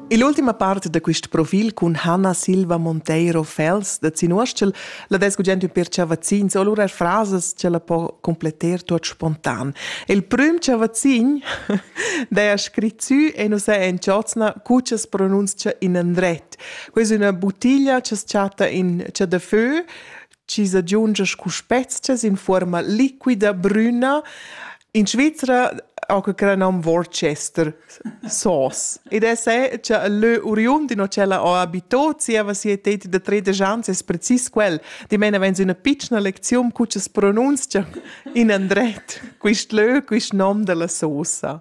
Ill'ultima part da quest profil cun Hanna Silva Monteiro Fels da Zinuostschel la des gugent ün per chavazzins o lura frasas che la po completter tuot spontan. Il prüm chavazzin daja scrit sü e nu s'ha in chozna cu cha pronunzcha in andret. Questa è una bottiglia che chatta in chadafö chi s'agiungia scu spezchas in fuorma liquida brüna. In Svizra ho que cra nom Worcester sauce ed es è cha il lö oriund in ho ch'ella ho abito zieva sia teti da tredisch ans es precis quel. Dimena vains üna pitschna lecziun cu cha's pronunzcha in andret quist lö, quist nom da la sosa.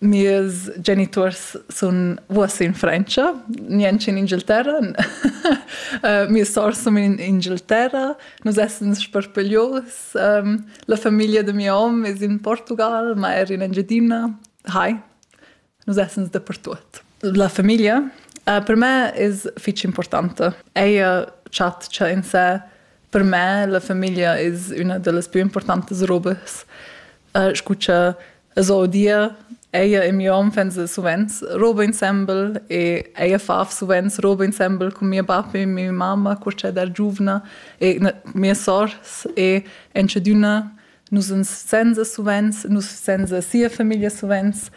Mes geniturs sun uossa in Frantscha, niench in Inghilterra. uh, mia sour sun in Inghilterra, nus essans sparpaglios. Um, la famiglia de mio hom es in Portugal, ma er in Engiadina. Hi, nus essans dapertuot. La famiglia uh, per me es fich importante. Ella chatscha in sé. Per me la famiglia es üna da las più importantes robes. Uh, scucha Es ho dir eir in mieu hom fans suvenz roba insembel e eir faf suvenz roba insembel cun mia bap e mia mamma cur cha da giuvna e mia sour e entschedüna nus ans senza suvenz nus senza sia famiglia suvenz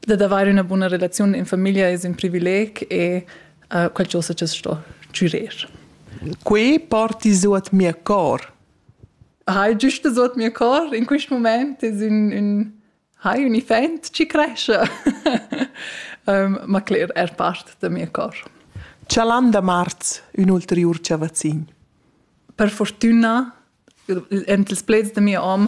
dad avair üna buna relaziun in famiglia es ün privileg e uh, qualchosa cha's sto chürer. Quai porti suot mia cor. Hai giüsta suot mio cor in quist mumaint es ün ün hai ün iffaint chi crescha, ma cler eir part da mia cor. Chalan da marz ün ulteriur chavazzin? Per furtüna, ent ils pleds da mia om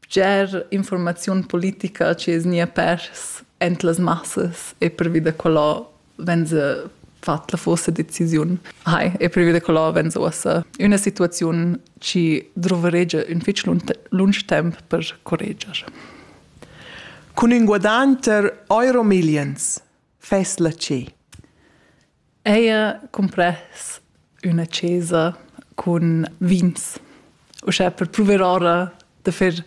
bger informaziun politica chi es gnia pers aint las massas e pervi da quella venza fat la forsa decisiun. Hai, e pervi da quella venza uossa üna situaziun chi druveregia ün fich lunch temp per correger. Cun ün guadanter euro millions fess la ce. Eir cumpress üna chesa cun vins, uschè per pruver ora da fer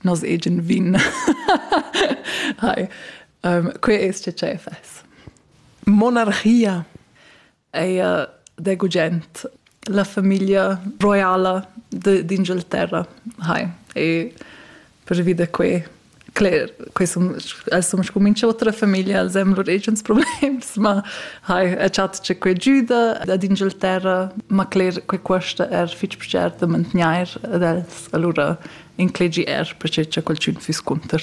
nos egen vin. Hai, que es che tschè fess. Monarchia, eir da gugent la famiglia roiala d'Inghilterra hai e pervi da quei cler, quei sun, els sun scumincio otra famiglia, els hem lur agens problems, ma hai a chat che quei giuda ad Inghilterra, ma cler, quei cuosta er fich pcher da mantgnair ad els, allura inclegi er perché cha qualchün füss cunter.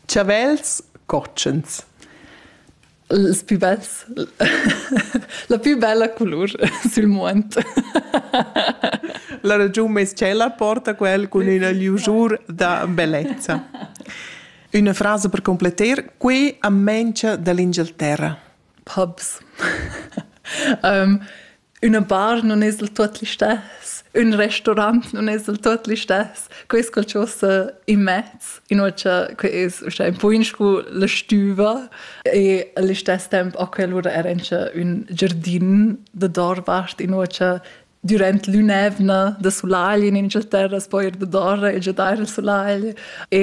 Chavels cotschens. Els pü bels. La pü bella culur sül muond. La ragiun meis tschella porta quel cun üna liusur da bellezza. Üna frasa per completer, qui am mengia dall'Inghilterra. Pubs. um, Üna bar nun es del tuot listess, ün restaurant nun es del tuot listess, que es qualchosa immez, inoltre que es uschè ün po in scu la stüva e al istess temp ho quel oura eir incha ün giardin da doorvart, inoltre dürant l'ün'eivna da sulagl in Inghilterra s'po eir dadoura e giadair il sulagl e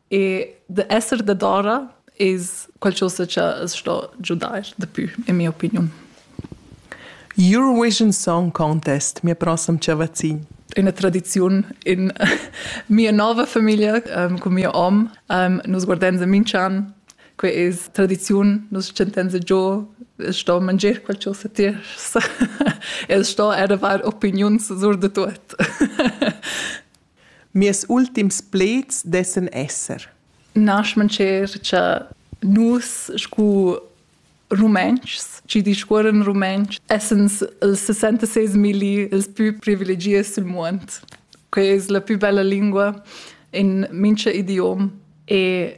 E de esser dadora es qualchosa cha as sto giudair dapü, in mia opiniun. Eurovision Song Contest, mia prossem chavazin. Üna tradiziun in mia nova famiglia um, cun mio om. Um, nus guardenza minch'an. Que es tradiziun, nus chantenza giò, es sto mangier qualchosa tiers. es sto eravar opiniuns sur de tuot. Mirs ultims pleds dessan esser. Naschmancher cha nus scu Rumentschs chi discuorran rumentsch essans ils 66.000 ils pü privilegiats sül muond. Quai es la pü bella lingua in mincha idiom e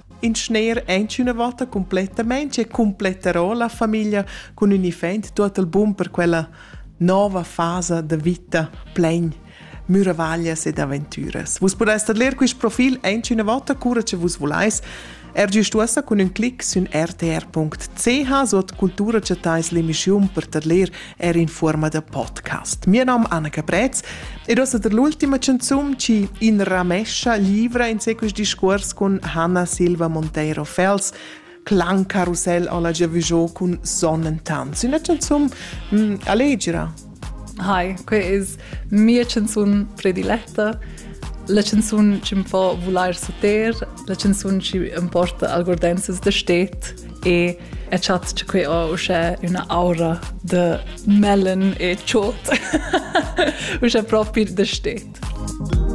In schner aint üna vota cumplettamaing e cumpletterò la famiglia cun ün effet tuot il bun per quella nouva fasa da vita plain müravaglias ed aventüras. Vus pudestet ler quist profil aint üna vota cura che vus vulais. Er giust uossa cun ün clic sün rtr.ch suot cultura chattais l'emischiun per tadler er in forma da podcast. Mio nome è Anna Caprez ed ho der l'ultima canzone ci in ramescia livra in sequis discuors con Hanna Silva Monteiro Fels Clan Carousel alla Giavujò cun Sonnentanz. Una canzone mm, allegra. Hi, qui is mia canzun prediletta la canzun chi am fa vulair suter, la canzun chi am porta algordenses da stet e e chat che quei ha usche üna aura de melon e chot usche propi de stet.